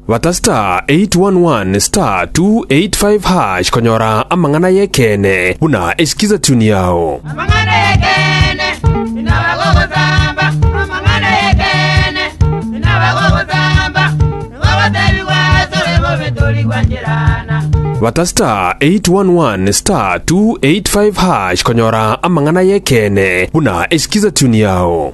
Bata star 811 star 285 hash konyora amang'ana y'ekeene buna esikiza tune yao. Amang'ana y'ekeene, inabagogosamba. Amang'ana y'ekeene, inabagogosamba. Nigogoteebigwa asore bobe tori gwancherana. Bata star 811 star 285 hash konyora amang'ana y'ekeene buna esikiza tune yao.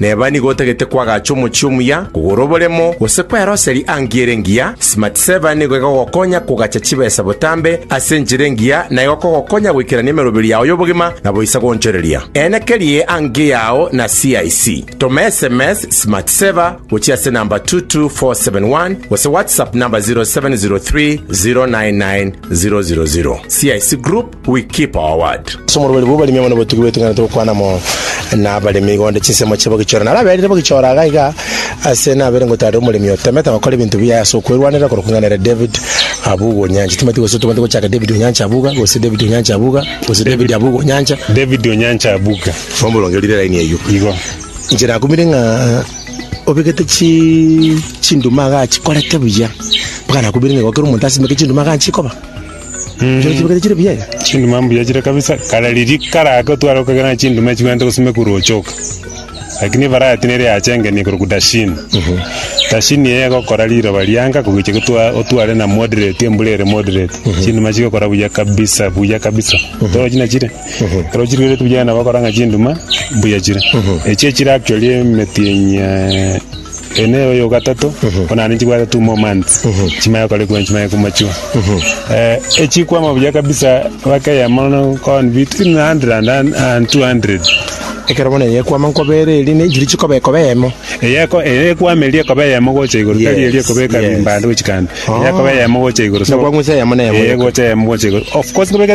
Neba nigo otagete kwagacha omochie omuya, kogora oboremo, gose kweroseri angie ere engiya, Smartsaver nigo egogokonya kogacha chibesa botambe ase enchera engiya na egokogokonya goikerania emeroberi yao y'obogima na boisa goonchoreria. Eena kerie angie yao na CIC. Toma sms Smartsaver gochia ase namba 22471 gose WhatsApp namba 0703 099 000. CIC Group We keep our word. Ase omorweri bw'oboremi amo nobotugi bwetung'anete gokwana amo nabaremi iga onde chinsemo chiabo gichore. Naro aberire bogichora iga iga ase nabere ngotarire omoremi otemete gokora ebinto biaye ase okwerwanera korokwa ing'ana ere David Abuga Onyancha. Timati gose tobwate gochaka David Onyancha Abuga gose David Onyancha Abuga gose David Abuga Onyancha. David Onyancha Abuga. Bobe orongerire eraini eyio. Igo. Inche nakumire ng'a obegete chi chinduma iga achikorete buya. Mpaka nakumire ng'a egokera omonto asimeke chinduma iga nchikoba. Chire chibekete chire buya iga. chinduma mbuya chire kabisa kare riria kare ake otware okogera chinduma chibwenerete gose mekuru ochoka lakini ebarati nere yachengenie korokwa dashini dashini eye egokora riroba rianka kogecha gotwa otware na moderate embura ere moderate chinduma chigokora buya kabisa buya kabisa torochi na chire ekero chirigerete buya nabo ogokora ng'a chinduma mbuya chire echio chire actually emetienyi eh, Ere nere oyo ogatato, onana ne chibwato two more months chimaya korekwa chimaya komachiwa. Eh, echikwama buya kabisa bakeya mono kon between 100 and, and 200. Ekero bono eyekwama nkobere eri ne chiri chikoba ekoba eyemo. Eyeko eyekwama eria ekoba eyemo gocha igoro tari Yes, eria ekoba ekabimba yes. ande gochika ande. Oh. Eyekoba eyemo gocha igoro. So, Nakwa ng'use eyemo na eyemo eh, yoka. gocha eyemo gocha igoro. Of course kobekera